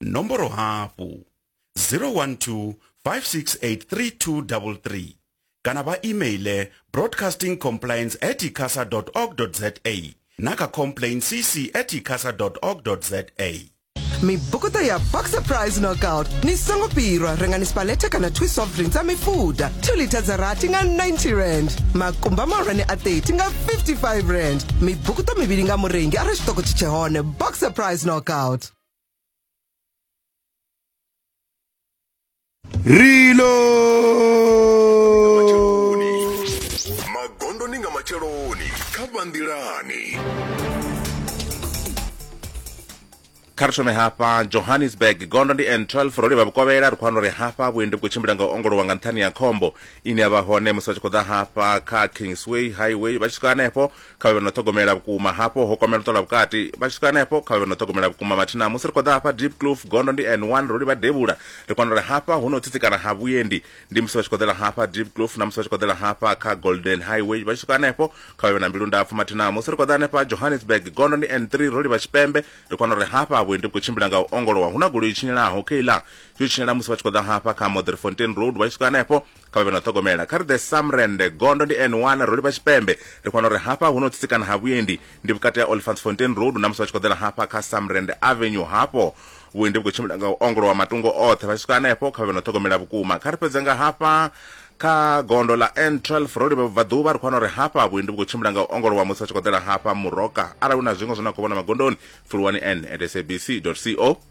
nomboro hafhu 012 5683233 kana vha emaile broadcasting compliance at icasa org za na kha complain cc at icasa org za mibukuta ya boxer prize knockout ni songo pirwa rengani spalete kana twi soft drinks a mifuda 2 lita dza rati nga 90 rand makumba mahulwane a 30 nga 55 rand mibukuta mivhili nga murengi arali tshiṱoko tshi tshehone boxer prize knockout magondoni nga matsheloni kha vhanḓilani kha ri thome hafha johannesburg gondo ndi n12 ro livha vhukovhela ri khou wana uri hafha vhuendi vhu khou tshimbila nga u ongolowa nga nṱhani ya khombo ine ya vha hone musi vha tshi khou ḓa hafha kha kingsway highway vha tshi swika hanefho kha vhe vha no ṱhogomela vhukuma hafho ho kwamela u ṱola vhukati vha tshi swika hanefho kha vhe vha no ṱhogomela vhukuma mathina musi ri khou ḓa hafha deep cloof gondo ndi n one ro livha devhula ri kwana uri hafha hu no tsitsikana ha vhuendi ndi musi vha tshi khou ḓela hafha deep cloof na musi vha tshi khou ḓela hafha kha golden highway vha tshi swika hanefho kha vhe vha na mbilu ndapfu mathina musi ri khou ḓa hanefha johannesburg gondo ndi n three ro livha tshipembe ri kwana uri hafha vhuendi vhu khou tshimbila nga u ongolowa hu na goloi i tshinyelaho keiḽa yo tshinyela musi vha tshi khou ḓa hafha kha modrifontein road vha tshi swika hanefho kha vha vhe na ṱhogomela kha ri ḓe samrende gondo ndi n1 ro livha tshipembe ri khona uri hafha hu no tsitsikana ha vhuendi ndi vhukati ha olifantsfontein road na musi vha tshi khou ḓela hafha kha samrende avenue hafho vhuendi vhu khou tshimbila nga u ongolowa matungo oṱhe vha tshi swika hanefho kha vha vhe na ṱhogomela vhukuma kha ri fhedze nga hafha kha gondo ḽa n12 ro livha vhubvaḓuvha ri khou wana uri hafha vhuendi vhu khou tshimbila nga u ongolowa musi vha tshi khou ḓela hafha muroka arali hu na zwiṅwe zwine a khou vhona magondoni pfuluwani n at sabc co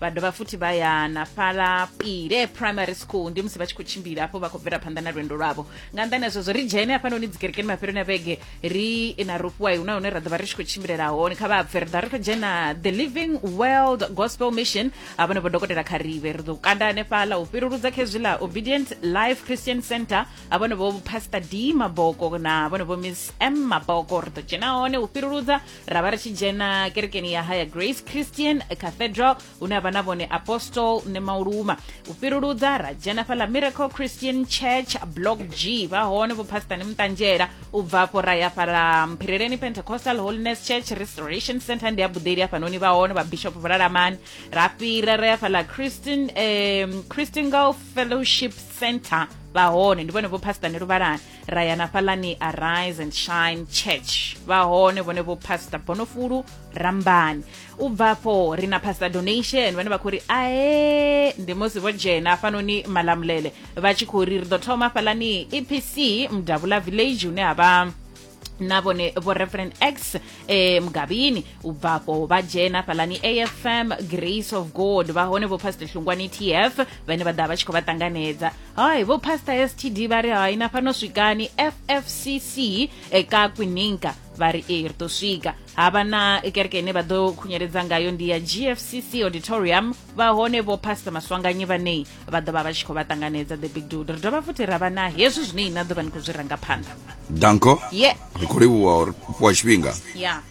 vha dovha futhi vha ya na fhala pile primary school ndi musi vha tshi khou tshimbila hafho vha khou bvela phanḓa na lwendo lwavho nga nḓani azwo zwo ri dzhene hafhanoni dzikerekeni mafheloni a vhege ri na rofhiwai hu na hune ra ḓovha ri tshi khou tshimbilela hone kha vha bve ri ḓa ri khou dzhena the living world gospel mission a vhone vho dokotela kharive ri ḓo kanda hanefhala u fhiruludza kha hezwi ḽa obedient life christian center a vhone vho pastor d maboko na vhone vho miss m maboko ri ḓo dzhena hone u fhiruludza ra vha ri tshi dzhena kerekeni ya haya grace christian cathedral hune ha vha na vhone apostle nemauluma u fhiruludza ra dzhena fhaḽa miracle christian church block g vha hone vho pastor muṱanzhela u bva afho ra ya fhala mphireleni pentecostal holiness church restoration center ndi ya buḓeli hafhanoni vha hone vhabishop vhulalamani ra fhira ra ya fhala christian um, christian golf fellowship center vha hone ndi vhone vho pastor neluvhalani ra ya na fhaḽani arise and shine church vha hone vhone vho pastor bonofulu rambani u bva afho ri na pastor donation vhane vha khou ri ae ndi musi vho dzhena hafhanoni malamulele vha tshi khou ri ri ḓo thoma fhaḽani epc mudavula village hune ha vha na vhone vho reverend x eh, mugabini u bvafho vha dzhena fhaḽani afm grace of god vha hone vho pastor hlungwani tf vhane vha ḓa vha tshi khou vha ṱanganedza hai vho pastor std vha ri hai na fhano swikani ffcc e ka kwininka vha ri ee ri ḓo swika havha na kereke ine vha ḓo khunyeledza ngayo ndi ya gfcc auditorium vha hone vho pastor maswanganyi vhanei vha ḓo vha vha tshi khou vha ṱanganedza the big dude ri dovha futhi ra vha na hezwi zwine ina ḓo vha ni khou zwi ranga phanḓa danko yeah. ri khou livhuwa uri fhiwa tshifhinga yeah.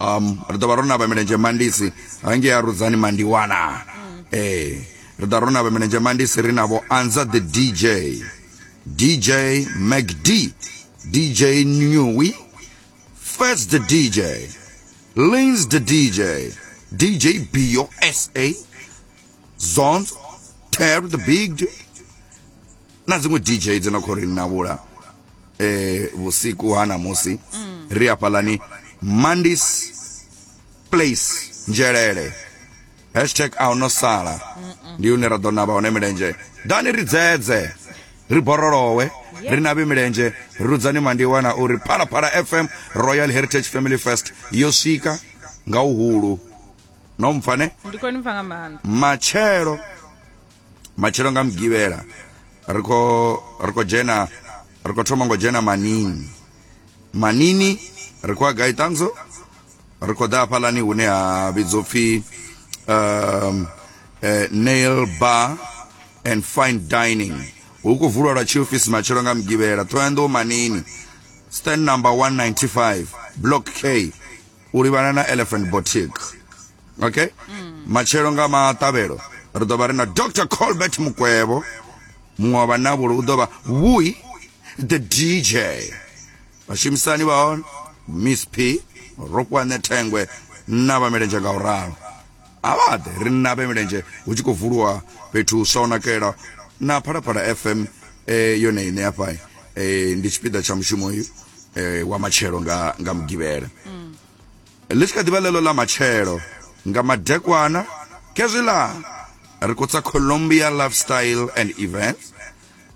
um ri ḓo vha ro navha milenzhe mandisi hangei a rudzani mandiwana ee ri ḓa ro navha milenzhe mandisi ri navho anza the dj dj macd dj nui first the dj lins the dj dj bio sa zons terry the big J- na dziṅwe dj dzo na khou ri navhula eh vhusiku ha namusi ri hafhalani mandis place nzhelele hashtag a no sala ndi hune ra ḓo navha hone milenzhe dani ri dzedze ri borolowe ri navhe milenzhe rudzani mandiwa na uri phalaphala fm royal heritage family fest yo swika nga uhulu no mpfane ndi khou ni pfa nga maanḓa matshelo matshelo nga mugivhela ri kho ri kho dzhena ri kho thoma ngo dzhena manini manini ri kho gai tanzo ri kho ḓa hafhalani hune ha vhidzwa upfhi um, uh, nail bar and fine dining hu khou vulwa lwa tshiofisi matshelo nga mugivhela ṱhohoyanḓou manini stand number 195 block k u livhana na elephant boutique okay mm. matshelo nga maṱavhelo ri ḓo vha ri na dr colbert mukwevho muṅwe wa vhanavhulo u ḓo vha vui the dj vhashumisani vha hone miss p rokwane thengwe na vhamelenzhe nga u ralo a vha ḓe ri navhe milenzhe hu tshi khou vuliwa fhethu swa u nakela na phalaphala fm eh, yone ine hafha eh, ndi tshipiḓa tsha mushumo uyu eh, wa matshelo nga, nga mugivhela mm. ḽi tshi kha ḓivha ḽeḽo ḽa matshelo nga madekwana kezwiḽa ri khou tsa colombia lifestyle and events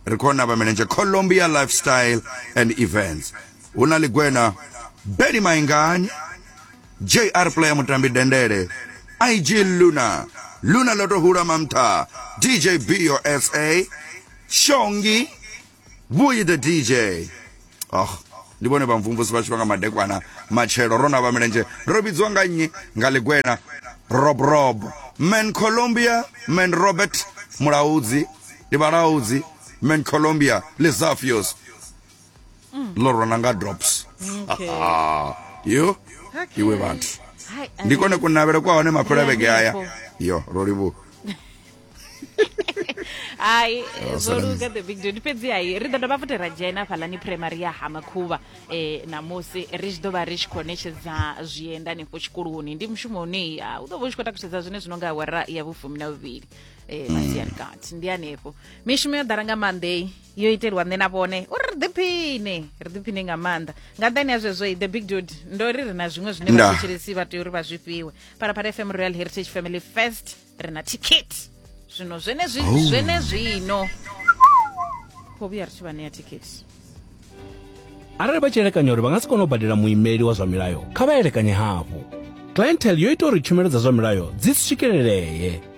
ri khou navha milenzhe colombia lifestyle and events hu na ḽigwena beli maingani jr player mutambi dendele ig luna luna ḽo to hula mamtha dj bio sa shongi vhuyi the dj oh ndi vhone vhamvumvusi vha tshifha nga madekwana matshelo ro na vha milenzhe ro vhidziwa nga nnyi nga ḽigwena rob rob man colombia man robert mulaudzi ndi vhalaudzi man colombia lizafios mm. ḽo rona nga drops okay. yo okay. iwe vhathu ndi kone kunavhele kwa hone mafhelo vhege aya yo ro livhuwa hai oh, zwo luga the big dude fhedzi hai ri ḓo dovha futhi ra dzhena fhaḽani primary ya hamakhuvha um eh, namusi ri tshi ḓo vha ri tshi khou ṋetshedza zwienda hanefho tshikoloni ndi mushumo une u ḓo vha u tshi khou takusedza zwine zwi no nga awara ya vhufumi na vhuvhili um eh, masiari mm. kati ndi hanefho mishumo yo ḓala nga maanḓei yo itelwa nṋe na vhone uri ri ḓiphine ri ḓiphine nga maanḓa nga nṱani ya zwezwo the big dude ndo ri ri na zwiṅwe zwine Nda. vhathetshelesi vha tea uri vha zwi fhiwe phalaphala fm royal heritage family first ri na ticket zwino zwenezwi zwenezwino kho vhuya ri tshi vha ṋea ticket arali vha tshi elekanya uri vha nga si kone u badela muimeli wa zwa milayo kha vha elekanye hafhu clientele yo ita uri tshumelo dza zwa milayo dzi si swikelelee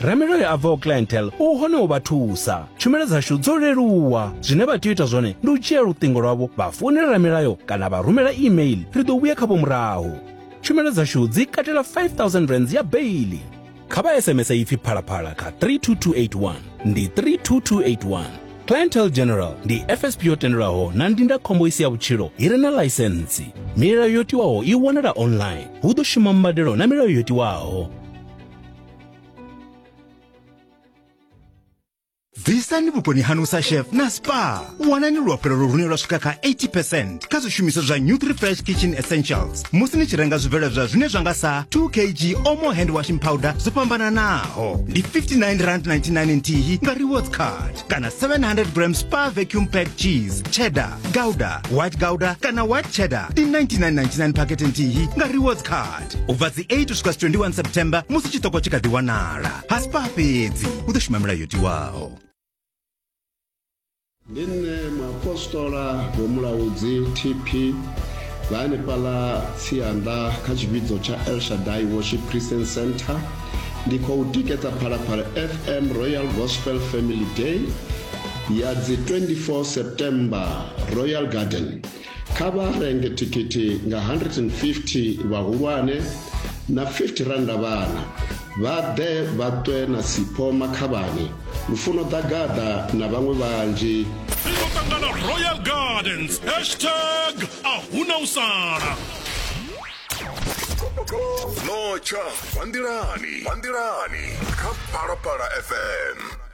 Ramiloyo a bvaho Clientele u hone u vha thusa. Tshumelo dzashu dzo leluwa. Zwine vha tea u ita zwone ndi u dzhia luṱingo lwavho vha founela Ramilayo kana vha rumela e-mail, ri ḓo vhuya khavho murahu. Tshumelo dzashu dzi katela R5000 ya beiḽi. Kha vha SMS ipfi Phalaphala kha 32281, ndi 32281. Clientele General ndi FSP yo tendelwaho na ndindakhombo i si ya vhutshilo i re na ḽaisentsi. Milayo yo tiwaho i wanala online. Hu ḓo shuma mbadelo na milayo yo tiwaho. bvisani vhukoni hanu sa chef na spa wanani luafhulelo lune lwa swika kha 80 kha zwishumiswa zwa nutri fresh kitchen essentials musi ni tshi renga zwibveledzwa zwine zwa nga sa 2 kg omo hand washing powder zwo fhambananaho ndi 59 rand 99 nthihi nga rewards card kana 700 gram spa vacuum pack cheese cheddar gouda white gouda kana white cheddar ndi 99.99 pakete nthihi nga rewards card u bva dzi 8 u swika 21 september musi tshiṱoko tshi kha ḓi wanala haspa fhedzi u ḓo shuma milayo yo tiwaho ndi nṋe muapostola vhomulaudzi tp vha hanefhaḽa tsianda kha tshivhidzo tsha elshadai worship christian center ndi khou tikedza phalaphala fm royal gospel family day ya dzi 24 september royal garden kha vha renge thikhithi nga 150 vhahulwane na 50 randa vhana vha ḓe vha ṱwe na sipho makhavhani lufuno ḓagaḓa na vhaṅwe vhanzhi ringo ṱangana royal gardens hashtag a huna u sala notsha vhandilani vhandilani kha phalaphala fm